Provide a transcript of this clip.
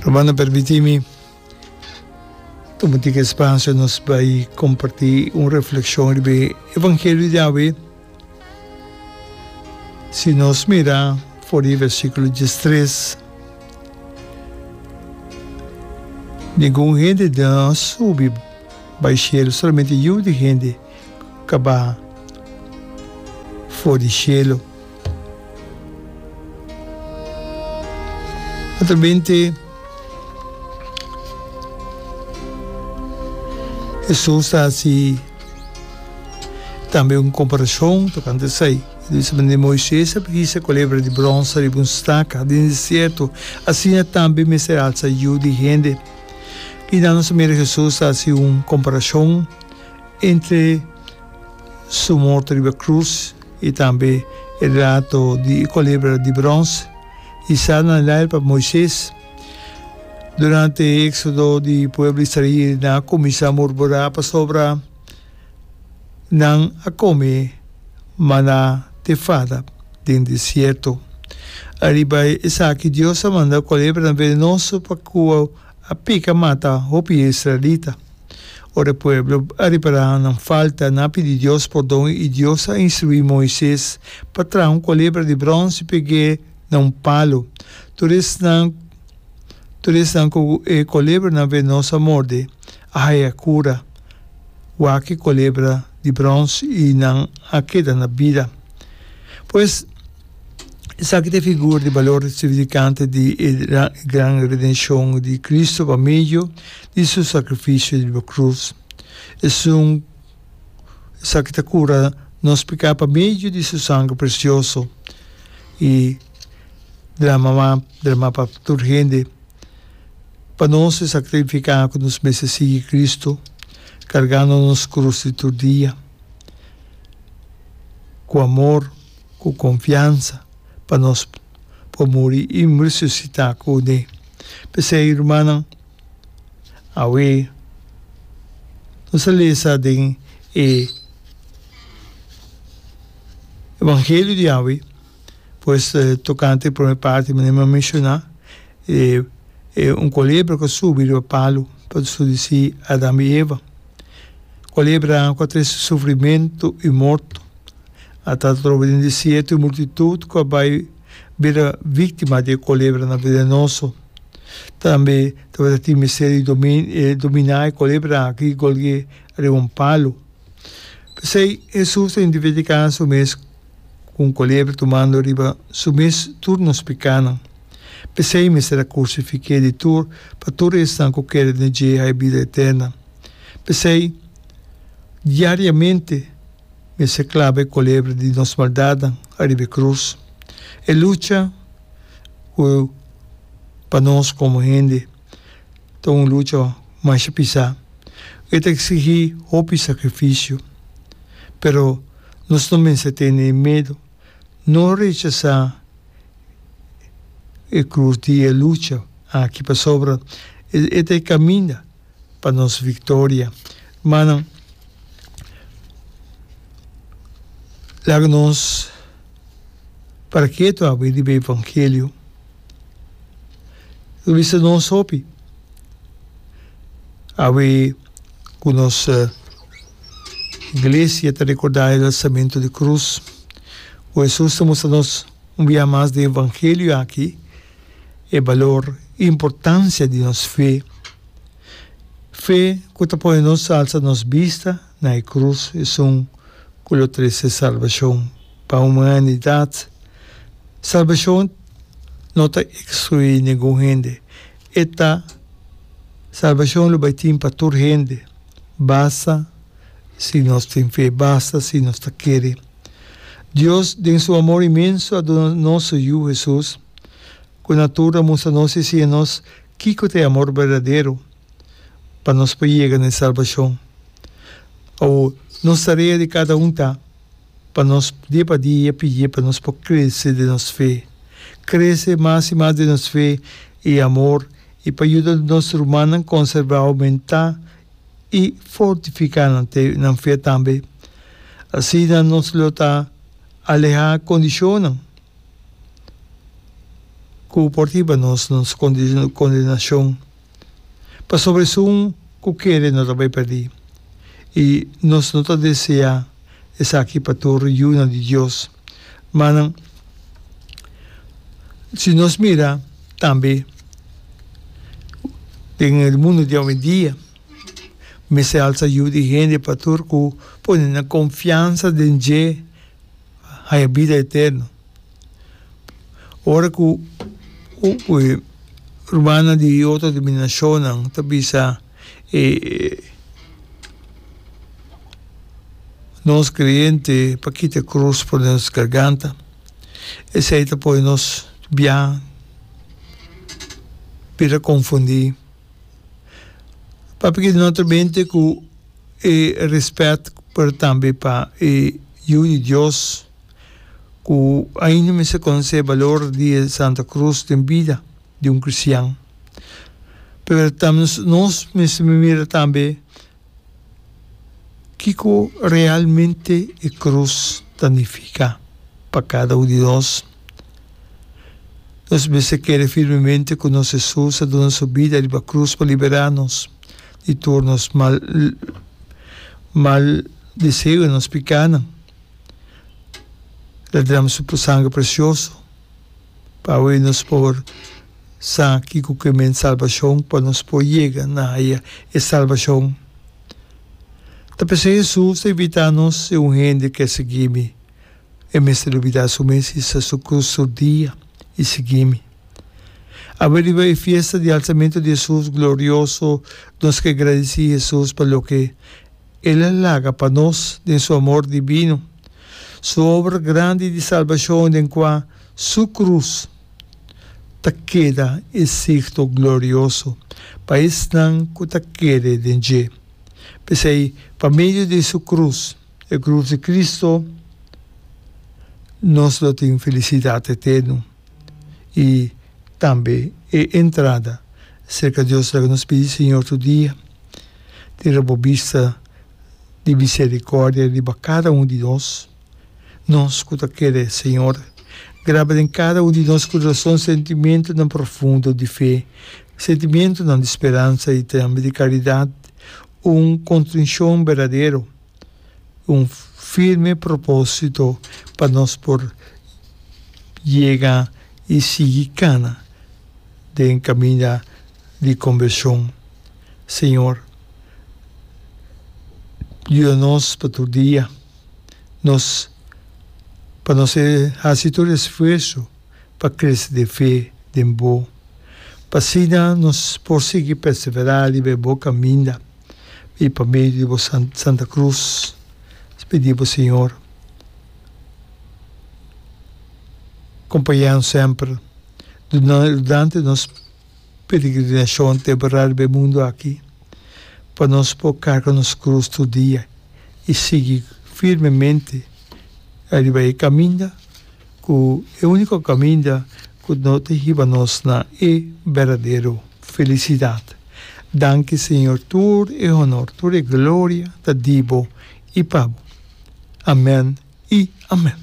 Romana permiti mi tuma tin e spasio nos bai komparti un reflekshon riba e evangelio di awe. Si nos mira for di e versikulo diestres, ningun hende di nos subi bai shelu, solamente yu di hende kaba for di shelu. Otro binte Hesus ta hasi tambe un komparashon tokante esei. E ta bisa, Manera Moises a hisa kulebra di bronse riba un staka den desierto, asina tambe mester alsa Yu di hende. Kina nos a mira Hesus ta hasi un komparashon entre Su morto riba krus I tambe e relato di e kolebra di brons i sa na laer pa Moises. Durante e eksodo di pueblo israel nan a kuminsá murmurá pasobra nan a kome maná te fada den desierto. Ariba esaki Dios a manda kolebranan venenoso pa kua a pika mata hopi israelita. Ora e pueblo a repará nan falta, nan a pidi Dios pordon i Dios a instruí Moises pa traha un kolebra di bronce i peg'é na un palu. Tur esnan tur esnan ku e kolebranan venos a morde a haya kura. Wak e kolebra di bronce i nan a keda na bida. Pues, Esaki ta e figur di balor sibilificante di e gran redenshon di Cristo pa medio di su sacrificio riba cruz. Esun, esaki ta cura nos peca pa medio di su sangre precioso y drama drama pa tur hende. Pa nos esaki ta significa cu nos mester sigui Cristo cargando nos cruz di tur dia cu amor. ku konfiansa pa nos por muri i resusitá ku uné. P'esei, rumannan, awe nos a lesa den e evangelio di awe, pues tokante e promé parti, manera mi a menshoná, e un kulebra ku a subi riba palu, pa su disí Adan i Eva. Kulebra ku a trese sufrimentu i morto. A tata trobe den desierto e multitud cu a bay bira victima di e colebranan venenoso. Tambe tabata tin mester di domina e colebra aki golgue riba un palu. P'esey Hesus ta identificá su mes cu un colebra tumando riba su mes tur nos pecanan. P'esey mester a crucifiqu'é di tur pa tur esnan cu kere den dje hay bida eterna. P'esey diariamente. Mester claba e colebra di nos maldadnan ariba e cruz. E lucha cu pa nos como hende ta un lucha masha pisa cu e ta exigi hopi sacrificio. Pero nos no mester tene e medo, no rechasa e cruz di e lucha aki pasobra e ta e caminda. pa nos victoria. Manan, laga nos para ketu habri riba e evangelio. Lo bisa nos hopi, awe cu nos Iglesia ta recorda e alzamento di cruz, cu Jesus ta mustra nos un bia mas di e evangelio aki, e balor i importansia di nos fe, fe ku ta pone nos alsa nos bista na e krus esun ku lo trese salbashon pa humanidat. Salbashon no ta ekskluí ningun hende, e ta Salbashon lo bai tin pa tur hende, basta si nos tin fe, basta si nos ta kere. Dios den su amor inmenso a duna nos su Yu, Hesus, ku na tur a mustra nos i siña nos kiko ta e amor berdadero pa nos por yega na e salbashon. Awor, nos tarea di kada un ta pa nos dia pa dia pidié pa nos por krese den nos fe, krese mas i mas den nos fe i amor i pa yuda nos rumannan konserbá, oumentá i fortifiká nan te nan fe tambe. Asina nos lo ta alehá kondishonnan ku por tiba nos na nos kondenashon. Pasobra esun ku kere no ta bai pèrdí, i nos no ta deseá esaki pa tur yunan di Dios. Ma nan, si nos mira tambe den e mundu di awendia, mester alsa yu di hende pa tur ku pone nan konfiansa den dje haña bida eterno. Ora ku rumannan di otro denominashonnan ta bisa, E nos creyente pa kita e cruz for den nos garganta, esey ta poi nos bia bira confundi. Papia ki no ta bente cu e respet pero tambe pa e Yu di Dios cu ainda mester conoce e balor di e Santa Cruz den bida. di un cristian. Pero ta nos mester mira tambe kico realmente e cruz ta nifica pa cada un di nos. Nos mester kere firmemente cu nos Jesus a duna su bida riba cruz pa libera nos di tur nos mal mal deseo y nos picanan. Lo a drama su sangre precioso. P'awe nos por sa kiko ku e mens salbashon, pa nos por yega na haya e salbashon. Ta pensa Hesus ta invitá nos, Si un hende ke sigui mi, e mester lubidá su mes, hisa su krus tur dia, i sigui mi. Awe riba e fiesta di alsamentu di Hesus glorioso, nos ke gradisí Hesus pa loke. El a laga pa nos den su amor divino su obra grandi di salbashon den kua su krus ta keda e signo glorioso pa esnan ku ta kere den dje. P'esei, pa medio di su krus, e krus di Kristu, nos lo tin felisidat eterno. i tambe e entrada serka Dios laga nos pidi Señor tur dia, tira bo bista di misericordia riba cada un di nos, nos cu ta kere Señor, graba den cada un di nos curason sentimentonan profundo di fe, sentimentonan di speransa i tambe di caridad, un contricion berdadero. un firme propósito pa nos por yega i sigui kana den kaminda di kombershon. Señor, yuda nos pa tur dia nos pa nos hasi tur esfuerso pa krese den fe den bo, pa asina nos por sigui perseverá riba e bo kaminda. i pa medio di bo Santa Cruz nos pidi bo Señor acompañanan semper durante nos peregrinacion te bra riba e mundo aki pa nos por carga nos cruz tur dia i sigui firmemente ariba e caminda. ku e úniko kaminda ku no ta hiba nos na e berdadero felisidat. Danki Señor, tur e honor, tur e gloria ta di bo i pa bo. Amèn i amèn.